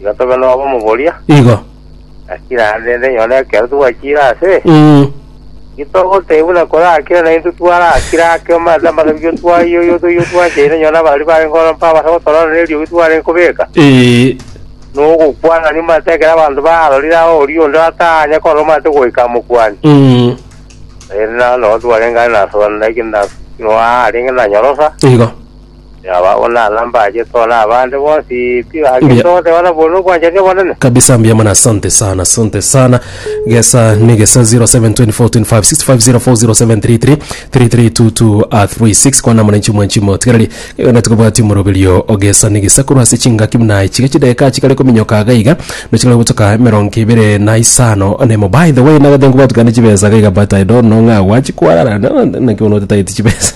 Igo tobe nobomoboria, Igo. lakini naende nenyore ekero togwachire ase, Mm. gitogotebi buna korakire naintwe twarakire ake omanyete amasabio twayoyio toyio twachaine onye na baria bare nkoro mpa abase gotorora neriogi twarenge kobeka. Eh. Nogokwanania omanyete ekero abanto barorire aho oria onde atanye korora omanyete goika amokwani. Mm. Ere nao nabo twarenge are nasobanera ekero na- noa arenge nanyorosa. Igo. Yaba onana mbache tore abande bonsi pi gaki Mbuya. togose bana bone obwanchani obonene. kabisa mbuya mono asante sana asante sana gesa ni gesa 072425650733332236 kwana muna nchimo nchimo tigarari gana tukabwati moroberio ogesa ni gesa korwa ase chingaki muna ichiga chideka chikare kominyoka aga iga nochikare gotoka emerongo ibere na isano na emo by the way nagete nkobwati kane chibesa gaiga but i don't know ng'a gwachikwara naki bono otataeti chibesa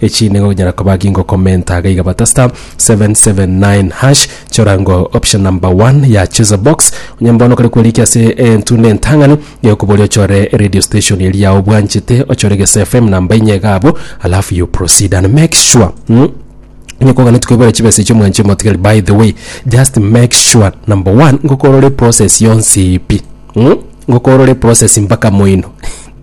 Echi nigo onyara koba gingokomenta iga iga bata star 779 hash chora ngo option number 1 ya choose a box onye mbono kare kwerike ase entunda entang'ani gekobori ochore radio station eri yao obwanchete ochore gese fm namba inye iga abo alafu you proceed and make sure mm, Inye kogana tukwebera chibesa ichio mwanchio motigari by the way just make sure number one ngokorore process yonsi ipi mm? ngokorore process mpaka moino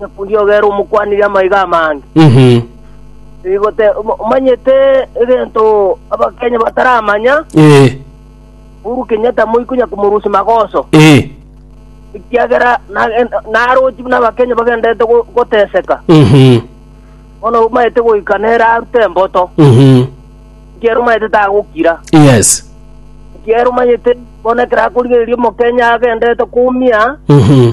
Omokundi ogere omokwanirie amaiga amange, Mhm. rigote om- omanyete egento Abakenya bataramanya, Eh. Uhuru Kenyatta moi konya komorusia magoso, Eh. ekiagera nagen- narochi buna Abakenya bagenderete go- goteseka. Mhm. Bono omanyete goika nere arute emboto, Mhm. ekiagera omanyete tagokira. Yes. Ekiagera omanyete bono ekero akorigereria Omokenya agenderete kumia, Mhm.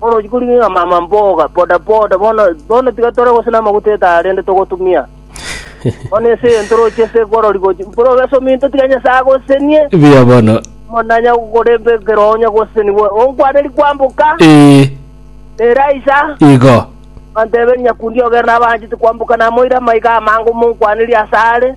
Orochi korigeka mama mboga, boda boda, bono, bono tiga tore gose namaguta etara rende togotumia. Bono ense eye ntoroche ase ekwarori gochi, mpore obese ominto tiga Nyasae agosesenie. Buya bono. Monanya koremba ekero onya gosesenigwa, onkwaneri kwamboka. Ee. Eraisa. Igo. Anteberi nyakundi ogere nabanchete kwamboka namoire amaiga amange omonkwanerie asare.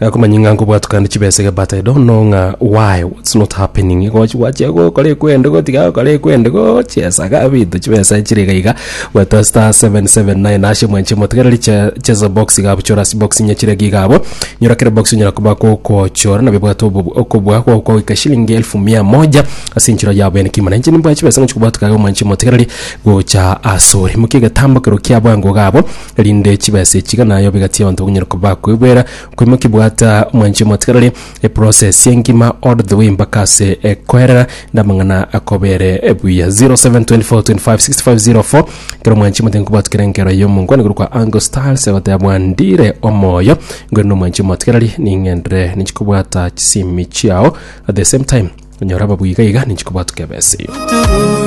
Gakomanya ng'a nkobwatukana chibesa iga but I don't know ng'a why what's not happening gochi gwachia gokora ekwende gotiga gokora ekwende gochiesa ga binto chibesa chire iga iga gweta star 779 ashe mwanche motegereri che- cheza box iga buchora ase box inye chire giga abo nyora kere box onyara koba gokochora nabio bwate obo- okobua goko goika shilingi elfu mia moja ase enchera yabo ene kimo na inche nimbwate chibesa ngochi kobwatuka iga mwanchi motegereri gocha asore mokie egetambo kero kiabo ango iga abo erinde chibesa echi iga naye obegatie abanto bakonyare kobakwegwera koimokia bwata mwanche omotigareri eprocess engima all the way mpaka ase ekoerera na amang'ana akobere buya 0724256504 kero mwanche omotigareri nkobwatukera enkera y'omongwana igoro kwa Angle Styles egoteba bwandire omoyo ngore na omwanche omotigareri ning'endere ninche kobwata chisimi chiao at the same time onyora ababuya iga iga ninche kobwatuka ebesa eyo